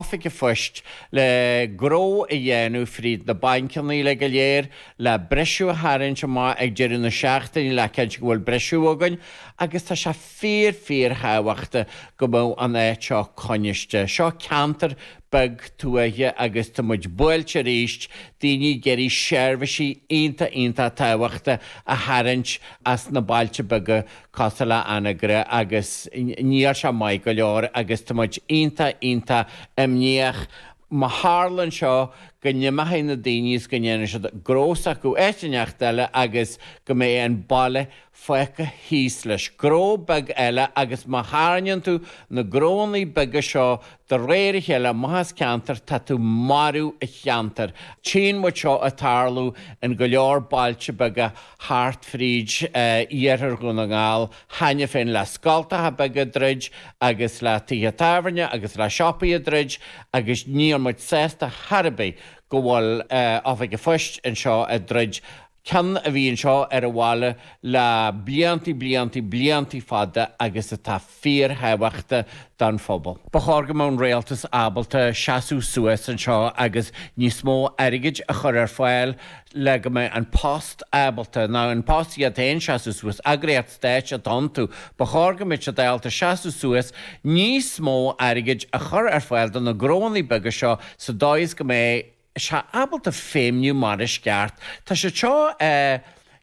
Oifig a' Phoist, le gnó a dhéanamh fríd na bainceanna uilig go léir, le briseadh a tharraingt amach ag deireadh na seachtaine le cinntiú go bhfuil briseadh againn, agus tá sé fíor fíorthábhachtach go mbeadh an áit seo coinniste. Seo ceantar beag tuaithe agus tá muid buailte aríst, daoine ag iarraidh seirbhisí iontach iontach tábhachtacha a tharraingt as na bailte beaga, cosúil le Anagaire agus níl sé maith go leor agus tá muid iontach, iontach imníoch má tharlann seo go n-imeochaidh na daoine is go ndéanfaidh siad gnó s'acu áit ineacht eile agus go mbeidh an baile fágtha thíos leis gnó beag eile agus má tharraingeann tú na gnóannaí beaga seo De réir a chéile amach as ceantar, tá tú ag marú an cheantair. Tchíonn muid seo ag tarlú in go leor bailte beaga thart fríd iarthar Dhún na nGall cheana féin le scoltacha beaga ag druid agus le tithe tábhairne agus le siopaí ag druid agus níl muid sásta chor ar bith go bhfuil Oifig an Phoist anseo ag druid ceann a bhí anseo ar an bhaile le blianta, blianta, blianta fada agus atá fíorthábhachtach don phobal. Ba chóir go mbeadh an Rialtas ábalta seasamh suas anseo agus níos mó airgid a chur ar fáil le go mbeidh An Post ábalta, nó An Post iad féin, seasamh suas. Eagraíocht stáit atá iontu, ba chóir go mbeadh siad ábalta seasamh suas, níos mó airgid a chur ar fáil do na gnóanna beaga seo sa dóigh is go mbeidh, siad ábalta feidhmniú mar is gceart. Tá siad seo eh.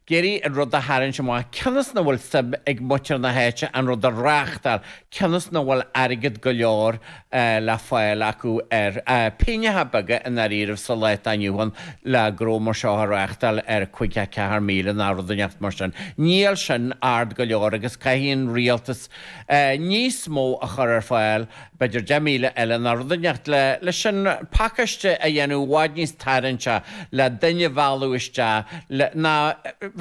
ag iarraidh an rud a tharraingt amach, cionn is nach bhfuil suim ag muintir na háite an rud a reáchtáil, cionn is nach bhfuil airgead go leor eh le fáil acu ar eh. pingneacha beaga i ndáiríribh sa lá atá inniu ann le gnó mar seo a reáchtáil ar 54,000 ná rud ineacht mar sin. Níl sin ard go leor agus caithfidh an rialtas eh níos mó a chur ar fáil eh. B'fhéidir deich míle eile ná rud ineacht le leis an pacáiste a dhéanamh i bhfad níos tarraingtí le duine a mhealladh isteach le, ná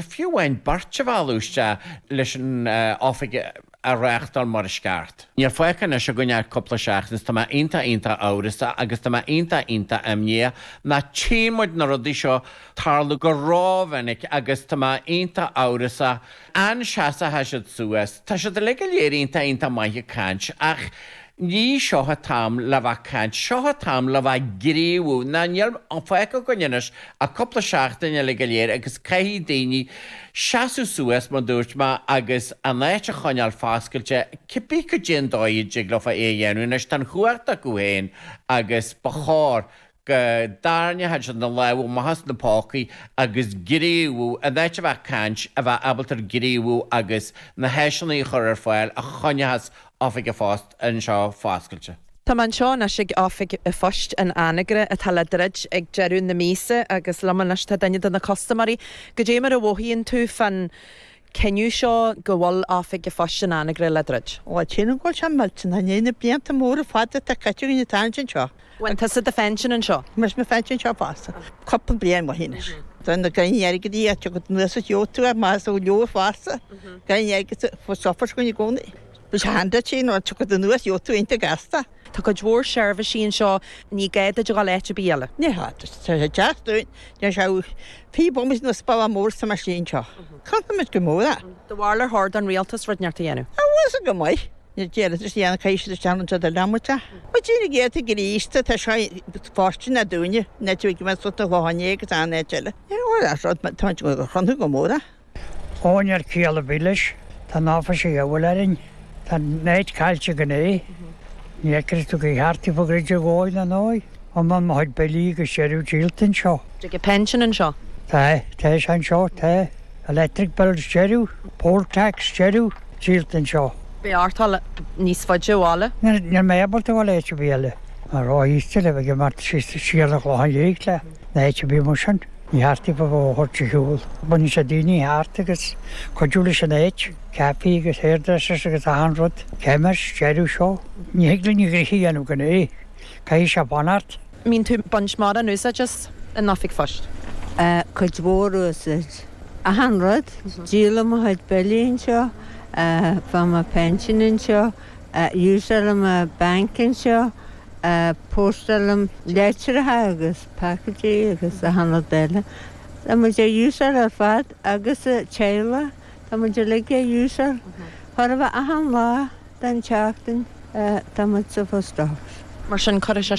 fiú amháin beirt a mhealladh isteach leis an oifig a reáchtáil mar is ceart. Níl fágtha anois againn ach cúpla seachtain is tá mé iontach iontach amhrasach agus tá mé iontach iontach imníoch ná tchíonn muid na rudaí seo ag tarlú go rómhinic agus tá mé iontach amhrasach An seasóchaidh siad suas. Tá siad uilig go léir iontach iontach maith ag caint, ach ní seo an t-am le bheith ag caint, seo an t-am le bheith ag gníomhú. Ná níl fágtha againn anois ach cúpla seachtain uilig go léir agus caithfidh daoine seasamh suas, mar dúirt mé, agus an áit a choinneáil foscailte, cibé cad é an dóigh a dtig leofa é a dhéanamh. Anois, tá an chumhacht acu féin agus ba chóir Go dtarraingeochaidh siad na lámha amach as na pócaí agus gníomhú, in áit a bheith ag caint, a bheith ábalta gníomhú agus na háiseanna a chur ar fáil a choinneochas Oifig a' Phoist anseo foscailte. Tá mé anseo anois ag Oifig a' Phoist in Anagaire atá le druid ag deireadh na míosa agus liom anois tá duine de na custaiméirí. Goidé mar a mhothaíonn tú fan cinneadh seo go bhfuil oifig an phoist in Anagaire le druid. Lá tinn an gol seo millteanach i ndiaidh na blianta móra fada atá caite againn atá ansin seo. Faigheann tusa do phension anseo? Faighim mo phension anseo fosta. Cupla bliain amuigh anois. Tá na gainní airgid aige agat anuas is gheobhadh tú ar maith is go leor fosta gainní airgid sa chófar seo i gcónaí. Seán duit, nó tiocfaidh tú anuas gheobhaidh tú iontach gasta. Tá cuid mhór seirbhísí anseo, ní gá duit a dhul áit ar bith eile. Ní hea, tá sé deas dúinn, níl sé taobh amuigh nó is baile mór sa mar sin seo. Caillfimid go mór é. Do bharúil ar cheart don Rialtas rud inteacht a dhéanamh. An bhfuil san go maith? Níor déarfadis dhéanamh chuaigh siad isteach anseo do leanbhaint a. Mo Dia na gcéadta Críosta, tá seo ina fortune a dúinne, an áit a bhfuil mé suite le hana é agus ana áit eile. Níor mhór an rud, táimid ag gabháil a chrothnú go mór é. Ó níl ciall ar bith leis, tá an áit seo a dhíobháil orainn, tá muid caillte gan é. Ní fheicim tuige ar cheart daofa a dhruid ar dhóigh ná ndóigh, iomlán mo chuid billí agus deireadh díolta anseo. Tuige pension anseo? Tá, tá sé anseo, tá. Electric bills, deireadh. Poll tax, deireadh. Díolta anseo. Beidh ort dhul níos faide ó bhaile. Níl, níl mé ábalta dhul áit ar bith eile. Tá mé ró-aosta le bheith ag imeacht síos siar an Chlocháin Liath ná áit ar bith mar sin. Ní cheart daofa a thabhairt ar shiúl. Baineann sé daoine thart agus cuidiú leis an áit, caife agus hairdressers agus achan rud, chemist, deireadh seo. Ní thig linn gnoithe a dhéanamh gan é, caithfidh sé fanacht. mbíonn tú ag baint mórán úsáid as an oifig phoist? Eh cuid mhór úsáid. Achan rud, díolaim mo chuid billí anseo, eh faighim mo phension anseo, eh úsáilim eh bank anseo, eh póstáilim leitreacha agus. Package agus achan rud eile. Tá muid á úsáid ar fad agus an teaghlach, tá muid uilig á úsáid chóir a bheith achan lá den tseachtain tá muid sa phost office. Mar sin cuirfidh sé.